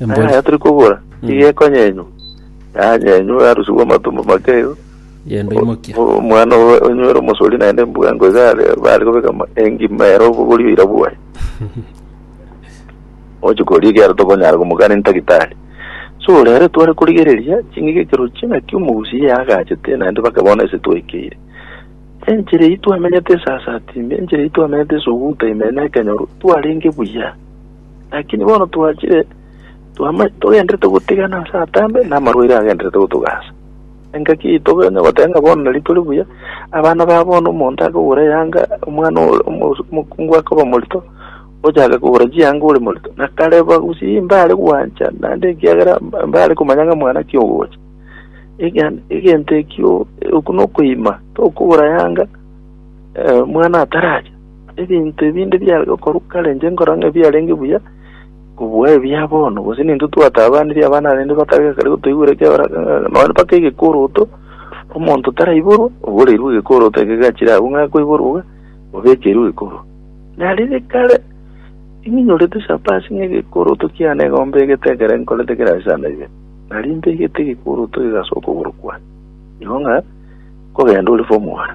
Embori. Aya tari kobora, nigo ekonyenywa, yanyenywe yarusigwe amatumbo make igo. Genda oimokia. O- Omwana owe onywere omosori naende embugango iga are bare kobeka ama- engima ere obogori oira bwaye. Oche koria ekiara tokonyara komokana entagitari. So rero tware korigereria ching'ige ekerochio naki omogusi ye agachete naende baka bono ase twekeire. Enchera eyio twamenyete esasati ime, enchera eyio twamenyete esuguta ime na ekenyoro, twarenge buya. Lakini bono twachire twama togenderete gotigana ase atambe, na amarwaire agenderete gotogasa. Engaki yaito onye goteba ng'a bono nari tore buya, abana ba bono omonto akogora eyanga, omwana ore- omo- omokungu akoba morito, ochake kogora chianga ore morito. Na kare bagusii mbare gwancha naende ekiagera mba- mbare komanya ng'a mwana ki ogocha. Egan- egento ekio, okwo nokoima, tokogora yanga mwana ataracha. Ebinto ebinde biare gokorwa kare inche nkorora ng'a ebiarenge buya kobua ebia bono, gose nintwe twataabanirie abana arende bakarega kare gotoigwera ekiagera ng'a nonya mpaka egekoroto omonto taraiborwa oboreirwe egekoroto eke gachire agwo ng'a akoiborwa iga obekeirwe egekoroto. Na riria kare ninyorete chapa ase ng'a egekoroto kiane igo mbegete ekero nkorete kera ase sana iga, nari mbegete egekoroto iga ase okogoro kwane igo ng'a kogenda ore form one.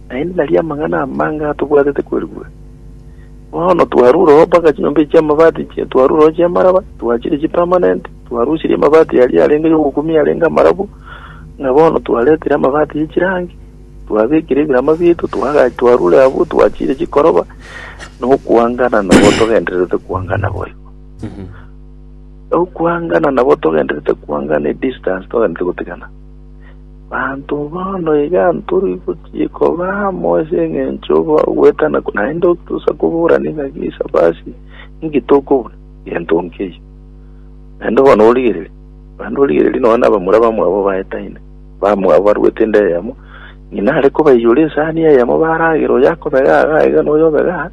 Naende naria amang'ana amange atobwatete kwerigwa. Bono twarurogo mpaka chinyomba echi chi'amabati, twarurogo chi'amaraba, twachiria chipermanent, twarusirie amabati aria arenge y'ogokumia arenge amarabu, ng'a bono twaretire amabati ye chirangi, twabekire ebirama biaito, twaga- twarure abwo, twachiria chikoroba, nokwangana nabo togendererete kwangana boigo. Nokwangana nabo togendererete kwangana edistance togendererete gotigana. Abanto bono iga ntori gochia koba amo ase engencho y'ogwetana, naende tosa koborania ngaki Sabati ninki tokobuna egento nkeiyo. Naende bono origererie, naende origererie nonya nabamura bamwabo baetaine, bamwabo baruete ende eyemo, ng'ina are kobaiyora esani eyemo baragere, oyo akobega igaa iga na oyo obega aa.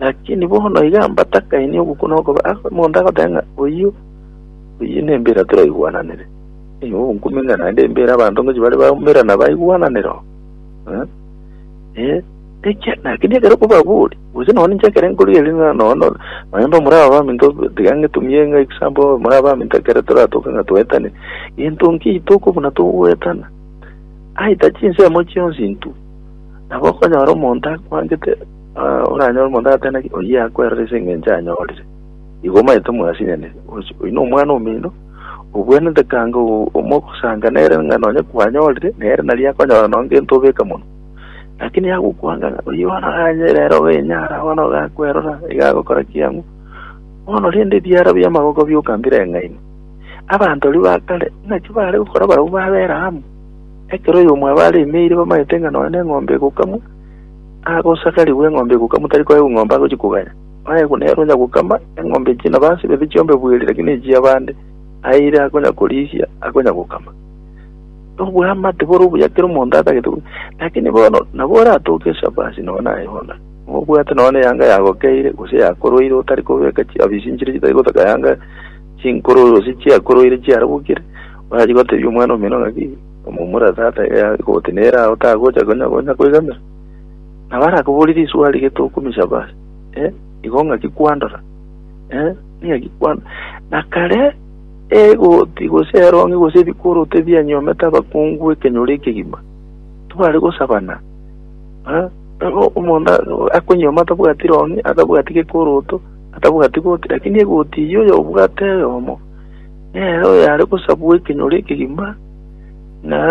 Lakini bono iga mbatakainie ogokwa na okoba, omonto agoteba ng'a oyio, oyio nembira toraigwananire. Nigo nkomenya naende embere abanto ngochia bare baumera na baigwananera oo. Eh, eh, ekia lakini ekero kobabori gose nonya ninche ekero nkorigereria ng'a nonya no- nonya nde omoraba baminto tiga ng'etumie ng'a example omoraba baminto ekero toratoke ng'a toetane gento nkei toko buna togoetana aita chinsemo chionsi intwe nabo okonyora omonto akwangete ah, oranyore omonto agateba naki oyio akwerora ase eng'encho anyorire igo omanyete mwasinyane Ochi- oyio nomwana omino Obwenerete kanga omogosanga nere ng'a nonya kwanyorire, nere nario akonyora nonya gento obeka monwa. Lakini agokwanga ng'a oyio bono ganye rero obenyara, bono gakwerora, iga agokora kiang'u. Bono rende ebiara bi'amagoko bioka mbireng'aine. Abanto aria ba kare naki baare gokora barabwo babera amo. Ekero oyomwabo aremeire bamanyete ng'a nonya neng'ombe egokamwa, agosagarigwa eng'ombe egokamwa tari koegwa eng'ombe agochia koganya. Aye buna ere onya gokama eng'ombe echio na basi babe chiombe bweri, lakini echia abande aye ere akonya korisia akonya gokama. Obwamate bore obuya kera omonto atagete koria. Lakini bono nabo oratoke ase abasi nao naye bono. Obwate nao neyanga yagokeire gose yakorwaire otari kobeka chiabisi nchire chitari gotaka yanga chinkoro gose chiakorwaire chiarabukire orachi gotebia omwana omino ng'aki momura tata iga yagote nere ago tagocha konya koigamera. Nabo arakobore risuba riria tokomichaba ase, eh, igo ng'aki kwandora, eh, ning'aki kwandora. Na kare egoti gose eronge gose ebikoroto ebianyomete abakungu ekenyoro ekegima, tibare gosabana, eh, nabo omonto akonyoma atabwati ronge, atabwati gekoroto, atabwati goti, lakini egoti eyio oyo obwate eyomo, nere oyare gosabwa ekenyoro ekegima, na.